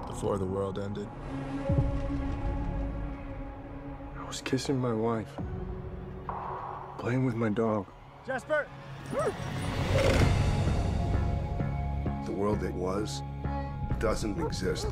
Before the world ended. I was kissing my wife. Playing with my dog. Jasper! The world that was doesn't exist.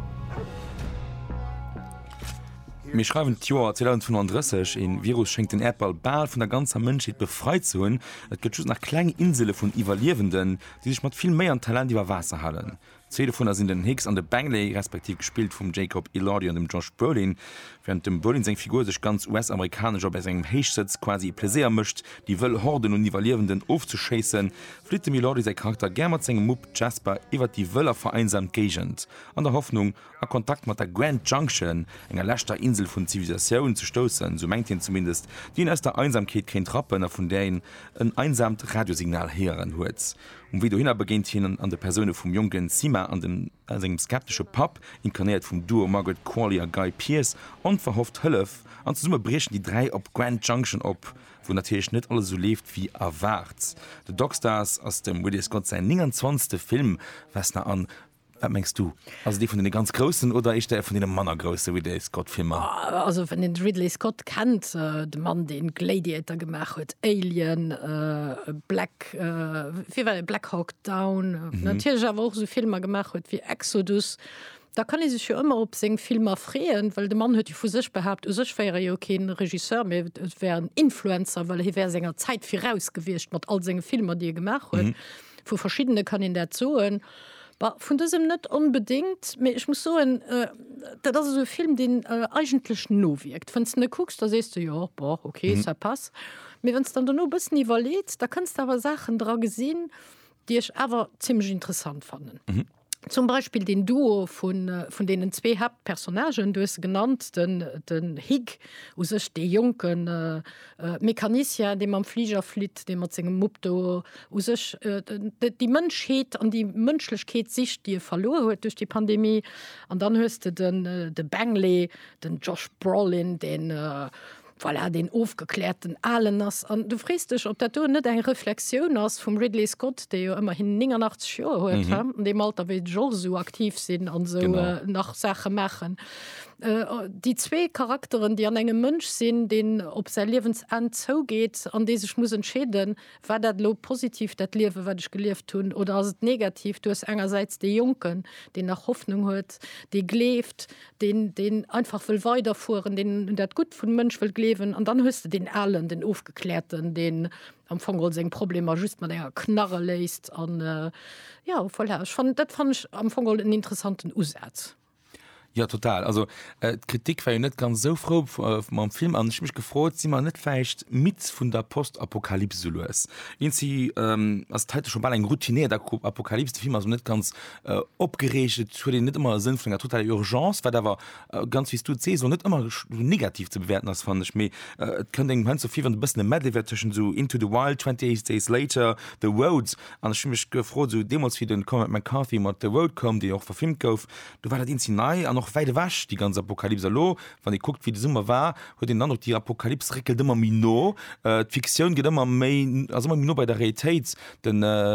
Mir schreiwen d'Joer 2035, een Virus schéngt den Äerdball bal vun der ganzer Mënschheet befreit ze hunn. Et gëtt just nach kleng Insele vun Iwwerliewenden, déi sech mat vill Méi an Talent iwwer Waasser halen. Zwee dovunner sinn den Hicks an de Bangley, respektiv gespillt vum Jacob Elordi an dem Josh Brolin. Wärend dem Brolin seng Figur sech ganz US-amerikanesch a bei sengem Héichsëtz quasi e Pleséier mécht, déi wëll Horden un Iwwerliewenden ofzeschéissen, flitt dem Elordi säi Charakter gär mat sengem Mupp Jasper iwwert déi wëll a vereinsamt Géigend, an der Hoffnung, a Kontakt mat der Grand Junction, enger leschter Insel vun Zivilisatioun, ze stoussen, esou mengt hien zumindest, déi een aus der Einsamkeet kéint rappen a vun där een en einsaamt Radiosignal héieren huet. Um Wee dohinner begéint hien an de Persoune vum jonken Sima a sengem skeptesche Papp, inkarnéiert vum Duo Margaret Qualley a Guy Pearce, onverhofft Hëllef, an zesumme briechen déi dräi op Grand Junction op, wou natierlech net alles esou leeft wéi erwaart. The Dockstars ass dem Ridley Scott säin 29. Film, Vesna an. Wat mengs du? Ass et ee vun deene ganz groussen oder éischter ee vun deene manner grousse Ridley Scott Filmer? Also wann een de Ridley Scott kennt, de Mann deen Gladiator gemaach huet, Alien, Black, wéi war deen, Black Hawk Down, natierlech awer och esou Filmer gemaach huet wéi Exodus, da kann ee sech jo ëmmer op seng Filmer freeën, well de Mann huet jo vu sech behaapt, u sech wär e jo kee Regisseur, mee et wär en Influencer, well hie wär senger Zäit viraus gewiescht mat all senge Filmer déi e gemaach huet. Vu verschiddene kann een dat soen. Bah, vun dësem net onbedéngt, mee ech muss soen, dat ass esou e Film, deen eigentlech nowierkt. Wann s de en kucks, da sees de, Jo, bon, ok, ça passe. Mee wann s de dann dono e bëssen iwwerleets, da kënns de awer Saachen dra gesinn, déi ech awer zimmlech interessant fannen. Zum Beispill deen Duo vun, vun deenen zwee Haaptpersonnagen, du hues se genannt, den, den Hig u sech, dee jonken, Mecanicien, dee mam Fliger flitt, dee mat sengem Mupp do u sech déi Mënschheet an déi Mënschlechkeet sicht, déi e verluer huet duerch déi Pandemie. An dann hues de de Benglé, den Josh Brolin, deen, voilà, deen ofgekläerten Alen ass. An du frees dech, ob dat do net eng Reflexioun ass vum Ridley Scott, dee jo ëmmerhin 89 Joer huet, an deem Alter wéi de George esou aktiv sinn an esou nach Saache maachen. Déi zwee Charakteren, déi an engem Mënsch sinn, deen op säi Liewensenn zougeet an dee sech muss entscheeden, War dat elo positiv, dat Liewe wat ech gelieft hunn, oder ass et negativ? Du hues engersäits dee Jonken, deen nach Hoffnung huet, dee gleeft, deen deen einfach wëll weiderfueren, deen un dat Gutt vum Mënsch wëll gleewen, an dann hues de deen Alen, den Ofgekläerten, deen am Fong geholl seng Problemer just mat enger Knarre léist. An jo, voilà, ech fannen, dat fannen ech am Fong geholl en interessanten Usaz. Jo total, also d'Kritik war jo net ganz esou frou mam Film an ech hu mech gefrot, si mer net vläicht midd vun der Postapokalyps esou lues? Ins si ass et heite scho bal eng routinéiert Apokalyps, de Film ass och net ganz opgereegt, et huet een net ëmmer e Sënn vun enger totaler Urgence, wat awer ganz wéi s du et sees och net ëmmer esou negativ ze bewäerten ass fannen ech, mee et kënnt engem heiansdo vir wéi wann e bëssen e Medley wär tëschent esou Into the Wild, 28 Days Later, The Road An ech hu mech gefrot, esou deemools, wéi den Cormac McCarthy mat The Road koum, deen jo och verfilmt gouf, do war dat eenzel nei an och wäit ewech, déi ganz Apokalyps. Elo, wann ee kuckt, wéi de Summer war, huet een den Androck, déi Apokalyps réckelt ëmmer méi no. D'Fiktioun gëtt ëmmer méi, ass ëmmer méi no bei der Realitéit. De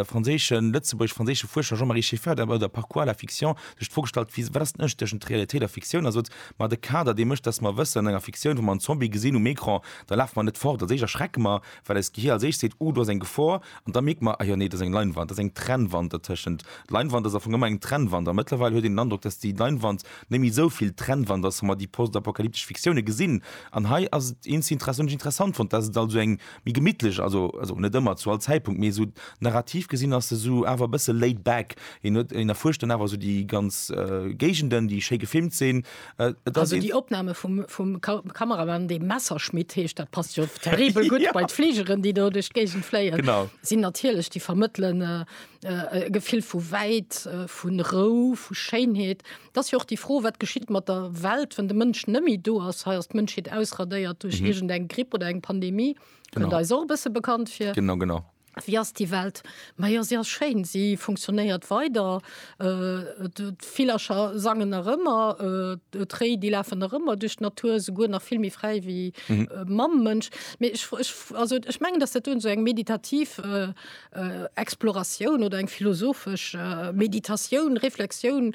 franséischen, lëtzebuergesch-franséische Fuerscher Jean-Marie Scheffer, der bei der Parcours à la fiction sech d'Fro gestallt huet, Wat ass den Ënnerscheed tëschent Realitéit a Fiktioun? A sot, Ma de Kader, dee mécht, datt mer wëssen, an enger Fiktioun, wa mer en Zombie gesinn um Ecran, da lafe mer net fort, als éischt erschrecke mer, well eist Gehir als éischt seet, Uh, do ass eng Gefor, an da mierkt mer, Ah jo, nee, do ass eng Leinwand, do ass eng Trennwand dertëschent. Leinwand ass am Fong ëmmer eng Trennwand, a mëttlerweil huet een den Androck, dass déi Leinwand net méi esou vill Trennwand ass, wa mer déi postapokalyptesch Fiktioune gesinn. An hei ass et eens inter-essant, hunn ech interessant fonnt, dass et also eng méi gemittlesch, also also net ëmmer, zu all Zäitpunkt, mee esou narrativ gesinn ass se esou awer e bësse laid back. Een huet, een erfuerscht dann awer esou déi ganz Géigenden, déi schéi gefilmt sinn, Äh, also die Opname vum, vum Kameramann de Messerschmidt heescht dat passt jo terribel gut ja. bei Fliegeren, die do duch Gegen fléien. sinn natierlech die vermëttelen äh, äh, äh, Gefill vu wäit, äh, vun Rou, vu Scheinheet. Dass jo och die froh wat geschitt mat der Welt, wann de Mënsch nëmi do ass heiers d Mënscheet ausradéiert duch mhm. irgend eng Gripp oder eng Pandemie. Genau. Da is och bësse bekannt fir. Genau genau. Wéi ass déi Welt? Ma jo, se ass schéin, se funktionéiert weider, d'Villercher sangen nach ëmmer, d'Réi, déi lafen nach ëmmer duerch d'Natur, souguer nach vill méi fräi wéi mam Mënsch. Mee ech, ech, also ech mengen, datt dat do esou eng meditativ Exploratioun oder eng philosophesch Meditatioun, Reflexioun,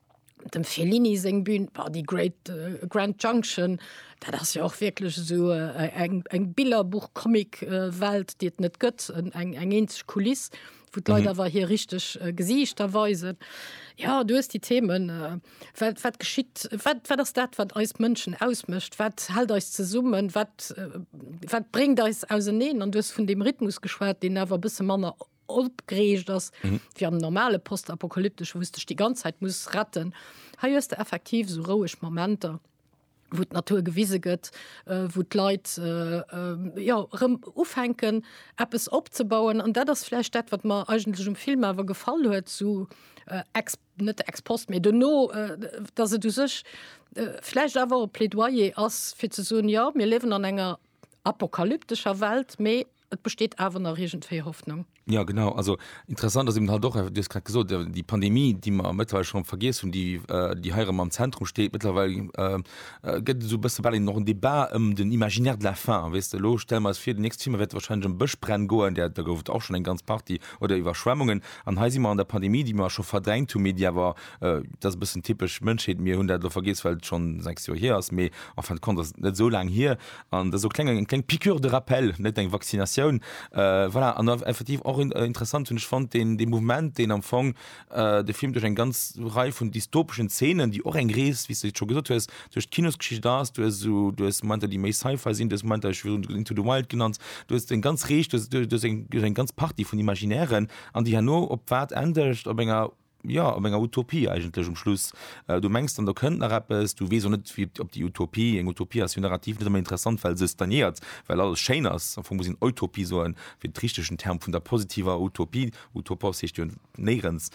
dem Fellini seng Bühn war die Great äh, Grand Junction, dat ass jo och wierklech esou äh, eng, eng Billerbuch Comic äh, Welt déi et net gëtt, eng, eng eenzeg Kuliss wou d'Leit mhm. awer hir richteg äh, Gesiichter weisen. Ja du hues die Themen äh, wat, wat geschitt wat, wat ass dat wat eis Mënschen ausmëscht, wat hält eis zesummen, wat, äh, wat bréngt eis auseneen an dues vun dem Rhythmus geschwat, deen awer bësse manner opgereegt ass fir am normale postapokalyptesch wou's dech déi ganz Zäit muss retten hei hues de effektiv sou roueg Momenter wou d'Natur gewise gëtt äh, wou d'Leit äh, äh, jo rëm ufänken eppes opzebauen an dat ass vläicht dat wat mer eigentlech um Film awer gefall huet zu äh, ex, net ex post méi duerno äh, datt et u sech äh, vläicht awer e Plädoyer ass fir ze soen ja mir liewen an enger apokalyptescher Welt mee Et besteet awer nach iergendwéi Hoffnung. Ja genau, also interessant ass eben halt och, du hues grad gesot, déi Pandemie, déi mer mëttlerweil schonn vergiess hunn, déi, déi hei erëm am Zentrum steet. Mëttlerweil gëtt et esou e bësse bal een och en Débat ëm den Imaginaire de la faim, weess de. Elo stelle mer eis vir, den nächste Film wäert warscheinlech ëm Bëschbränn goen, där do gouf et och schonn eng ganz Partie, oder Iwwerschwemmungen. An hei si mer an der Pandemie, déi mer scho verdrängt hunn, mee déi awer, dat ass e bëssen typesch Mënschheet, mir hunn dat elo vergiess, well et schonn sechs Joer hier ass, mee en fin de compte ass et net esou laang hier. An dat ass och kleng eng kleng Piqûre de rappel, net eng Vaccinatioun. Voilà, an effektiv och interessant hunn ech fonnt deen dee Mouvement, deen am Fong de Film duerch eng ganz Rei vun dystopeschen Zeenen, déi och eng Rees, wéi s de et scho gesot hues, duerch d'Kinosgeschicht ass. Du hues esou, du hues Momenter, déi méi Sci-Fi sinn, du hues Momenter, ech hu virun Into the Wild genannt, du hues eng ganz Rees, du hues eng ganz Partie vun Imaginären, an déi herno op wat endegt? Op enger. jo, op enger Utopie eigentlech um Schluss. Du mengs dann, do kënnt nach eppes, du weess och net wéi, ob déi Utopie, eng Utopie ass jo narrativ net ëmmer interessant, well se stagnéiert, well alles schéin ass. Am Fong muss een Eutopie soen, fir de richtigen Term vun der positiver Utopie, utopos heescht jo néierens,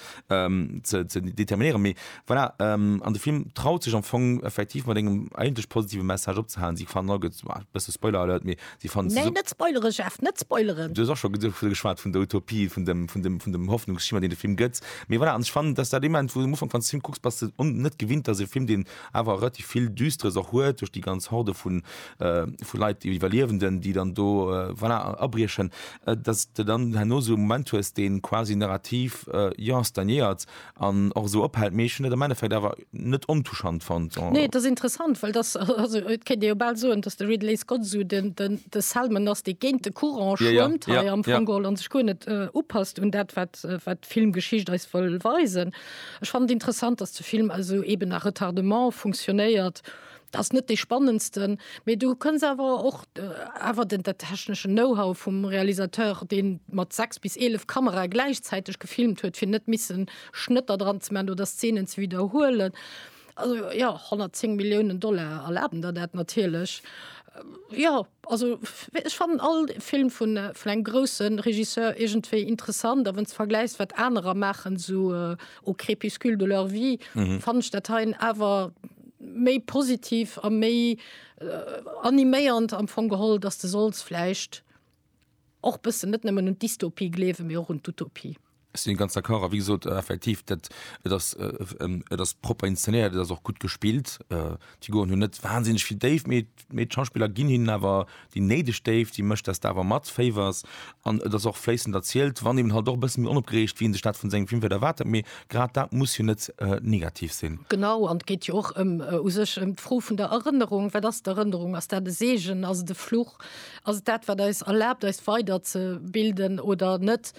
ze determinéieren. Mee voilà, an de Film traut sech am Fong effektiv mat engem eigentlech positive Message opzehalen. Si fannen all, gëtt, bësse Spoiler-Alert, mee Déi fannen se. Nee, net spoileren, Jeff, net spoileren! Du hues och scho geschwat vun der Utopie, vun dem, vun dem, vun dem Hoffnungsschimmer, deen de Film gëtt. Mee voilà, an ech fannen, dass dat dee Moment, wou du am Ufank, wann s de de Film kucks, bass de un, net gewinnt, dass e Film, deen awer relativ vill Düsteres och huet, duerch déi ganz Horde vu vu Leit, déi Iwwerliewenden, déi dann do, voilà, abriechen, dass s de dann herno esou e Moment hues, dee quasi narrativ, jo, stagnéiert, an och esou ophält. Mee ech hunn et am Endeffekt awer net ontouchant fonnt. Nee, et ass interessant, well dass, also et kéint ee jo bal soen, dass de Ridley Scott esou den, den, de Selman ass, dee géint de Courant Ja, ja, schwëmmt hei ja, am ja. Fong geholl an sech guer net upasst un dat, wat, wat d'Filmgeschicht eis wëll weisen. Ech fannen et interessant, dass de Film also eben à retardement funktionéiert, Ass net dee spannendsten, mee du kënns awer och awer den dat techneschen Know-how vum Realisateur, dee mat 6 bis 11 Kamerae gläichzäiteg gefilmt huet, fir net missen Schnëtter dran ze maachen oder Szenen ze widderhuelen. Also jo, 110 Milliounen Dollar erlaben der dat natierlech. Jo, also ech fannen all Film vun vun engem grousse Regisseur iergendwéi interessant. A wann s de vergläichs, wat anerer maachen, esou Au crépuscule de leur vie, fannen ech dat hei awer, méi positiv a méi animéiernd am Fong geholl, dass de solls vläicht och bëssen net nëmmen un d'Dystopie gleewen, mee och un d'Utopie. Ech si ganz d'accord. A wéi gesot, effektiv, dat, et ass, et ass propper inzenéiert, et ass och gutt gespillt. D'Figuren hunn net wahnsinneg vill Déift, mee Mee d'Schauspiller ginn hinnen awer déi néideg Déift, si mécht dass de awer matféiwers an et ass och fléissend erzielt, wann eben halt och e bësse méi onopgereegt wéi een sech dat vun sengem Film vläicht erwaart hätt. Mee grad dat muss jo net negativ sinn. Genau, an et geet jo och ëm u sech ëm d'Fro vun der Erënnerung. Wat ass d'Erënnerung? Ass dat e Seegen? Ass et e Fluch? Ass et dat wat eis erlaabt eis weider ze bilden oder net?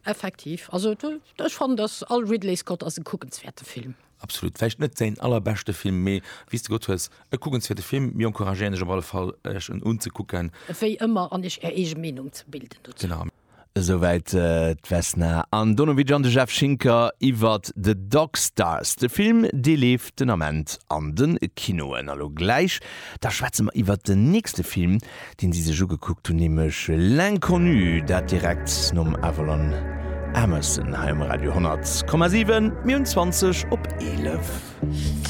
Effektiv, also ech fannen dass all Ridley Scott ass e kuckenswäerte Film. Absolut. Vläicht net säin allerbeschte Film, mee wéi s de gesot hues, e kuckenswäerte Film. Mir encouragéieren Iech op alle Fall, Iech en unzekucken. Wéi ëmmer, an Iech Är eege Meenung ze bilden dozou. Genau. Esouwäit d'Vesna Andonovic an de Jeff Schinker iwwer The Dog Stars. De Film, dee leeft den Ament an de Kinoen. A lo gläich, da schwätze mer iwwer den nächste Film, deen si sech ugekuckt hunn, nämlech L'Inconnu, dat direkt nom Avalon Emerson hei um Radio 100,7. Mir hunn 20 op 11.